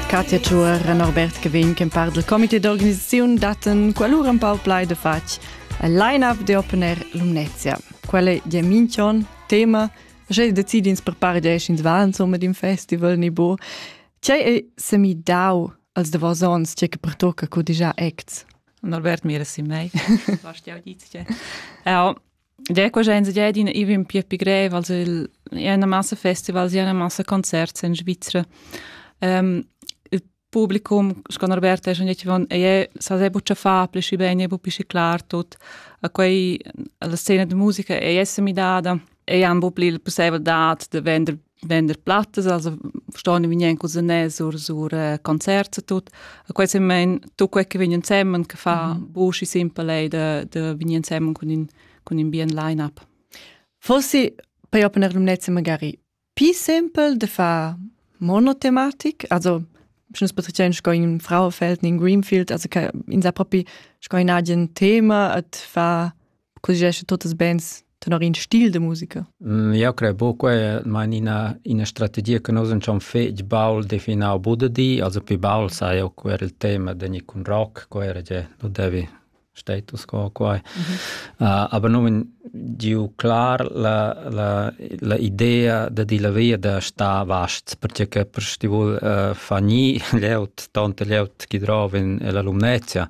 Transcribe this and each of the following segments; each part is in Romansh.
Katja Tschuer e Norbert Gewinn che par del comité d'organisaziun datten qualur un pau plai de fatg e line-up de opener Lumnezia. Quelle di Minchon, tema, Sche decidins per par dieschins van somma d'in festival ni bo. Tgei ei semi dau als de vos ons tge che pertocca co digià acts? Norbert mira si mei. Was die Auditie? Ja, Ja, quella è in idea d'ina event più più grev, also il è una massa festivals, è una massa concerts in Svizzera. Um, il publicum, con Roberta, è schon jetzt von, è sa sehr buccia fa, plesci bene, bu pisci clar tut. A quei la scena de musica è essere midada, e han bu pli il possibilità de vender vender plattas, also ston vegnan cusinès sur sur eh, concerts e tut. E quei semen tu quei che vegn ensemen che fa mm. buschi simple ei de de vegn ensemen cun in cun in bien line up. Fossi per opener lumnezza magari più simpel de fa monotematik, also schnes betrichen sco in Frauenfeld in Greenfield, also in sa propi sco in agen Thema et fa così tuttas bands tenor in stil de musica? Mm, eu cred buco man ina ina strategia che nus schon fetg baul definau bude di, also pi baul sai eu quer il tema de ni cun rock, quer je nu devi status quo quai. Mm -hmm. uh, aber nun giu clar la, la, la idea de di la via da sta vast, perché per stivul uh, fa ni leut, tante leut chi drov in l'alumnezia,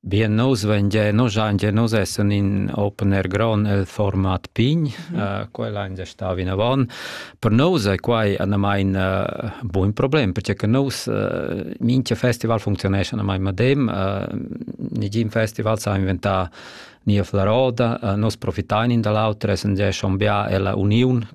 Bien nous vengia nos angia nous essan in open air ground el format pign, mm -hmm. uh, quella angia sta vinavon. Per nous è quai anamain uh, buin problem, perché che nous uh, minchia festival funzionesce anamain madem, uh, nigin festival sa inventà nia flaroda, uh, nos profitain in dall'autra, essan gia schon bia ella uniun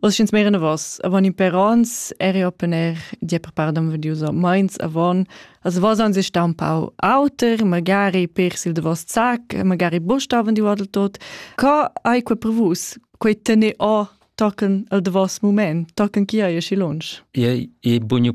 Oz sch'ins meir enavos, avon in per ons eri opener die prepardan vedius meins avon. Also was ans ist da un pau auter, magari per sil de vos zac, magari bustaven di wadel tot. Co hai quei prevus? Quei tene o tochen al de vos moment, tochen chi hai esci lunsch? E e bugnu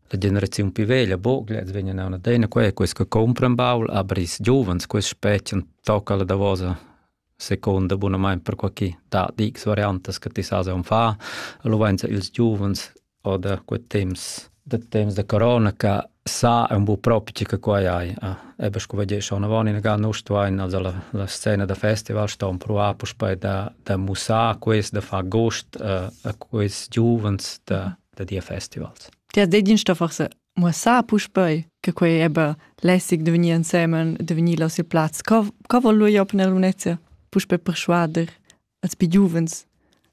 La generaziun pi veglia boglia els vegnan auna adina qua e quels che compran baul, aber ils giuvens, quels spetgan, tocca la davosa seconda bunamain per qualche da x variantas che ti sas on fa. Allo vainsa ils giuvens oder quel temps da temps da corona che sa un bu propi che quai hai. Ebbe sco vedi schon avon in ga nus tuain also la, la scena da festival ston provare per da da mussar quels da far gost a quels giuvens da da dir festivals. Ti has detg da forse muossar puspei che quei eba lässig de vegnir ensemen, de vegnir là sil plaz. Co, co vol lui op nella Lunezia puspei persuader als più giuvens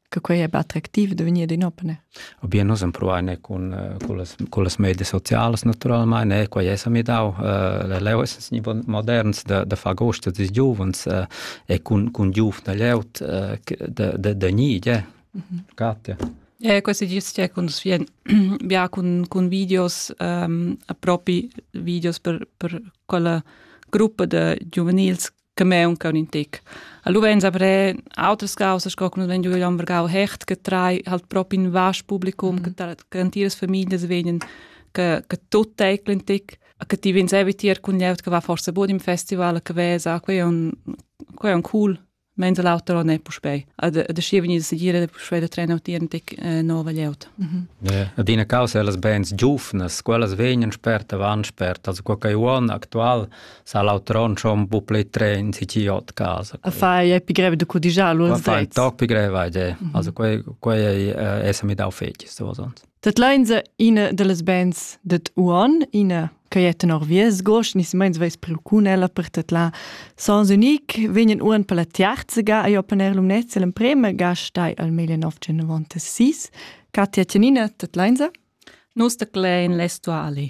che quei eba attraktiv de vegnir in opene? Obien nus empruane con con las con las medie sociales naturalmente, eh, quei es mi dau uh, leu es moderns da da far gosto des giuvens uh, e con con giuf da leut uh, de de de ni, eh, Katja. Eh, questi gis c'è cun svien bia cun cun videos ehm propi videos per per quella gruppa de giuvenils che me un un tic. Allo venza pre autres causas co con vendu am vergau hecht che trai halt proprio in vasch publicum mm -hmm. che garantiras famiglie vegnen che che tut teclen tic che ti vins evitier cun lieut che va forse bod im festival che vesa que un que un cool Meins l'auter non è puspei. Ad ad schi vegnir segir da puspei da trener tien tic nova glieud. Adina causa las bands giuvnas, quellas vegnan spert avant spert, also quel che uon actual sa l'autron schon bu plei tren si ci ot casa. A fai è pi greve de codigiar lu. Fai toc pi greve ide. Also quei quei è essa mi dau fetg so sonst. Tat lainsa ina dallas bands dad Uon, ina ch'ei è tenor vies gost ni silmeins veis priu cun ella per tedlar Sons Unique, vegnan uon per la tiarza ga ei open air Lumnezia l'emprema ga stai al meglio 1996. Katja Tjanina, tat lainsa. Nus tadlein l'Estuali.